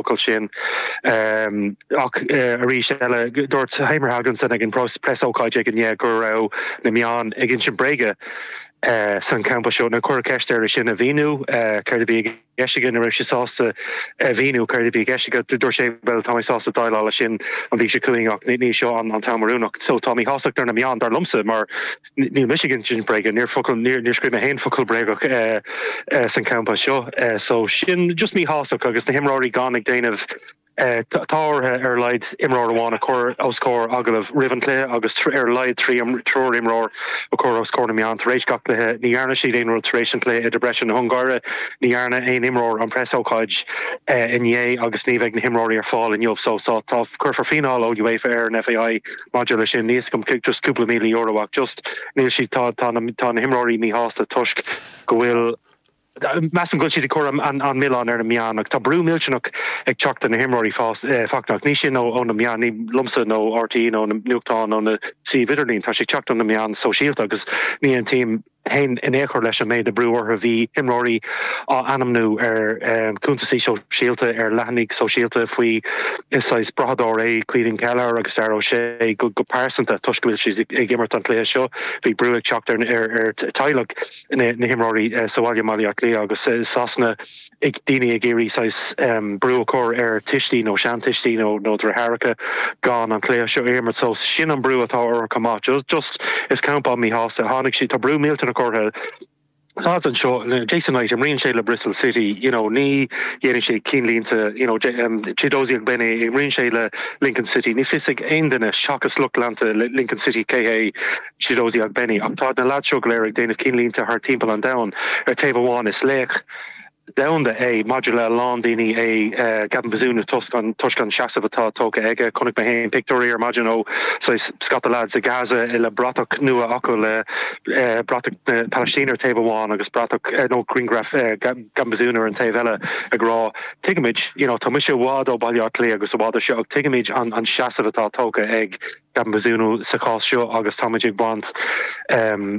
focal sin. Ach arís eile, dúirt Heimir Hallgrímsson ag an bpreasócáid aige inné go raibh na meáin ag insint bréige san campa seo. Nuair a cuireadh ceist air é sin a mhíniú, céard a bhí i gceist aige, ní raibh sé sásta a mhíniú céard a bhí i gceist aige. Dúirt sé, bhuel, tá mé sásta déileáil leis sin an mhí seo chugainn ach ní seo an t-am oiriúnach. So, tá míshástacht ar na meáin, dar liomsa, mar. Níl mise ag insint bréige, níor focal, níor, níor scríobh mé féin focal bréagach san campa seo, so sin just míshástacht agus na himreoirí gan ag déanamh, tá ortha ar a laghad imreoir amháin a chur os comhair agallamh roimh an cluiche agus ar a laghad trí, triúr imreoir a chur os comhair na meán tar éis gach cluiche, ní dhearna siad aon rud tar éis an chluiche i Debrecen na hUngáire, ní dhearna aon imreoir an preasócáid inné agus ní bheidh na himreoirí ar fáil inniu so tá, tá, cuirfear fíneáil ón UEFA ar an FAI. Maidir leis sin, níl a fhios agam, just cúpla míle euro ach just, níl siad, tá, tá na, tá na himreoirí míshásta toisc go bhfuil, measaim go bhfuil siad ag cur an, an, an milleán ar na meáin agus tá brú millteanach ag teacht ar na himreoirí fás, eh, fachtach. Níl sin ó, ó na meáin, ní, liomsa, nó RTÉ nó na nuachtáin nó na suímh idirlín, tá siad ag teacht ó na meáin sóisialta agus ní aontaím, féin in aon chor leis an méid brú orthu. Bhí imreoirí á n-ainmniú ar chuntasaí sóisialta ar leathanaigh shóisialta faoi saghas brathadóir é Caoimhín Kelleher agus Dara O'Shea go pearsanta toisc go bhfuil siad ag imirt an chluiche seo. Bhí brú ag teacht ar theaghlaigh na himreoirí sa bhaile, i mBaile Átha Cliath agus i Sasana, ag daoine ag iarraidh saghas brú a chur ar tuistí nó seantuistí nó deartháireacha gan an cluiche seo a imirt. So sin an brú atá ortha chomh maith. Just is campa an-mhíshásta atá ann agus tá brú millteanach ortha. Lads anseo, Jason Knight, imríonn sé le Bristol City, you know, ní dhéanann siad cinnlínte, you know, Chiedozie Ogbene, imríonn sé le Lincoln City, níl a fhios ag aon duine seachas lucht leanta Lincoln City cé hé. Chiedozie Ogbene. Ach táid na leaids seo go léir ag déanamh cinnlínte thart timpeall an domhain. Ar taobh amháin, is laoch domhanda é maidir le a lán daoine é Gavin Bazunu toisc an seasamh atá tógtha aige. Chonaic mé féin pictiúirí ar maidin ó saghas scata leaids i Gaza le bratach nua acu le bratach na Palaistíne ar taobh amháin agus bratach nó griangraf Gavin Bazunu ar an taobh eile ag rá tuigimid you know tá mise i bhfad ó Bhaile Átha Cliath agus i bhfad ó seo ach tuigimid an seasamh atá tógtha ag Gavin Bazunu sa chás seo agus táimid ag baint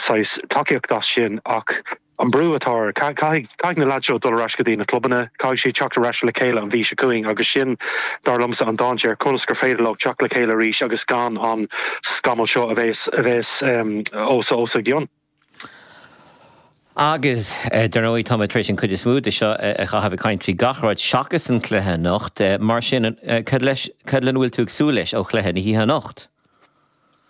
saghas tacaíocht as sin ach an brú atá ar, caithfidh na lads seo dul ar ais go dtí na clubanna, caithfidh siad teacht ar ais le chéile an mhí seo chugainn agus sin dar liomsa an dainséar, conas gur féidir leo teacht le chéile arís agus gan an scamall seo a bheith os a gcionn. Agus, dar ndóigh, tá mé tar éis an chuid is mó de seo a chaitheamh ag caint faoi gach rud seachas an cluiche anocht, mar sin cad leis, cad lena bhfuil tú ag súil leis ó chluiche na hoíche anocht?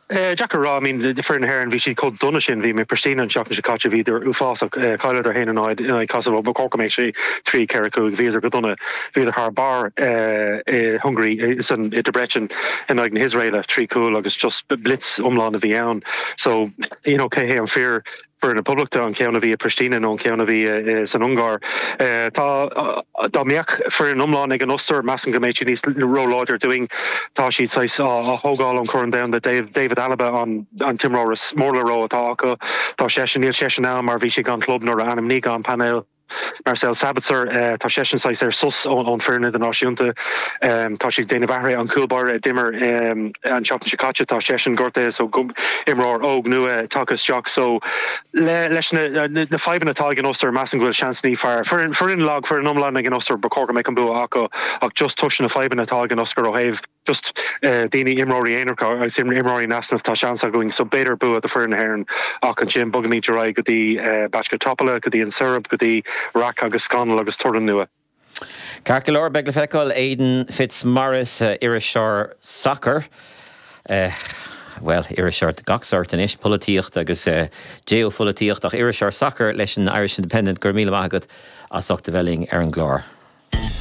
Deacair a rá, I mean, foireann na hÉireann, bhí siad chomh dona sin, bhí mé i bPristina an tseachtain seo caite, bhíodar uafásach, chailleadar a haon a náid in aghaidh Kosovo, ba chóir go mbeadh sé trí, ceithre, cúig, bhíodar go dona, bhíodar thar barr i Hungary, san, i Debrecen in aghaidh na hIosraela, trí chúl agus just blitz iomlán a bhí ann, so. You know, cé hé an fíor foireann na Poblachta, an ceann a bhí i Pristina nó an ceann a bhí san Ungáir? Tá, dá mbeadh foireann iomlán ag an Ostair, measaim go mbeidh siad níos róláidir dúinn. Tá siad saghas á thógáil ón Corn Domhanda. David Alaba an t-imreoir is mór le rá atá acu. Tá seisean, níl seisean ann mar bhí sé gan club nuair a ainmnigh an painéal. Marcel Sabitzer, tá seisean saghas ar sos ón foireann idirnáisiúnta. Tá sé déanamh athrú an cúl báire a d'imir an tseachtain seo caite, tá seisean gortaithe so imreoir óg nua tagtha isteach. So leis na fadhbanna atá ag an Ostair, measaim go bhfuil seans níos fearr. Foireann lag, foireann iomlán ag an Ostair, ba chóir go mbeadh an bua acu ach just toisc na fadhbanna atá ag an Ostair ó thaobh. just daoine, imreoirí aonaracha agus imreoirí in easnamh, tá seans againn. So b'fhéidir bua do foireann na hÉireann ach ansin bogaimid ar aghaidh go dtí Bačka Topola, go dtí an Seirb, go dtí raic agus scannal agus toradh nua. Ceart go leor, beidh le feiceáil. Aidan Fitzmaurice, iriseoir sacair, bhuel, iriseoir de gach sort anois, polaitíocht agus geopholaitíocht ach iriseoir sacair leis an Irish Independent, go raibh míle maith agat as ucht a bheith linn ar an gclár.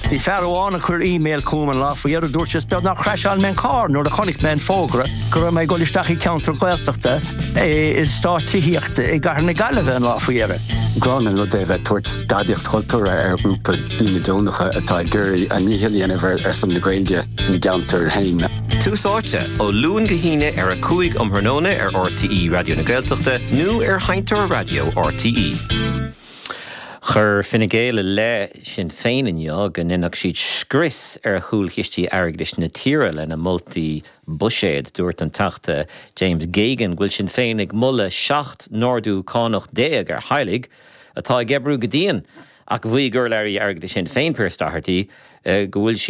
Bhí fear amháin a chuir e-mail chugam an lá faoi dheireadh a dúirt sé 'is beag nár chrasháil mé an carr nuair a chonaic mé an fógra go raibh mé ag dul isteach i gceantar Gaeltachta in eastát tithíochta i gcathair na Gaillimhe an lá faoi dheireadh. Gránna an rud é a bheith ag tabhairt gadaíocht chultúrtha ar ghrúpa daoine deonacha atá ag iarraidh a ndícheall a dhéanamh ar son na Gaeilge ina gceantar féin. Tús Áite, ó Luan go hAoine ar a 5 um thráthnóna ar RTÉ Raidió na Gaeltachta nó ar sheinnteoir raidió RTÉ. Chuir Fine Gael i leith Shinn Féin inniu go ndéanfadh siad scrios ar chúlchistí airgeadais na tíre lena moltaí buiséid. Dúirt an Teachta James Geoghegan go bhfuil Sinn Féin ag moladh 17 n-ardú cánach ar theaghlaigh atá ag oibriú go dian ach mhaígh urlabhraí airgeadais Shinn Féin Pearse Doherty go bhfuil siad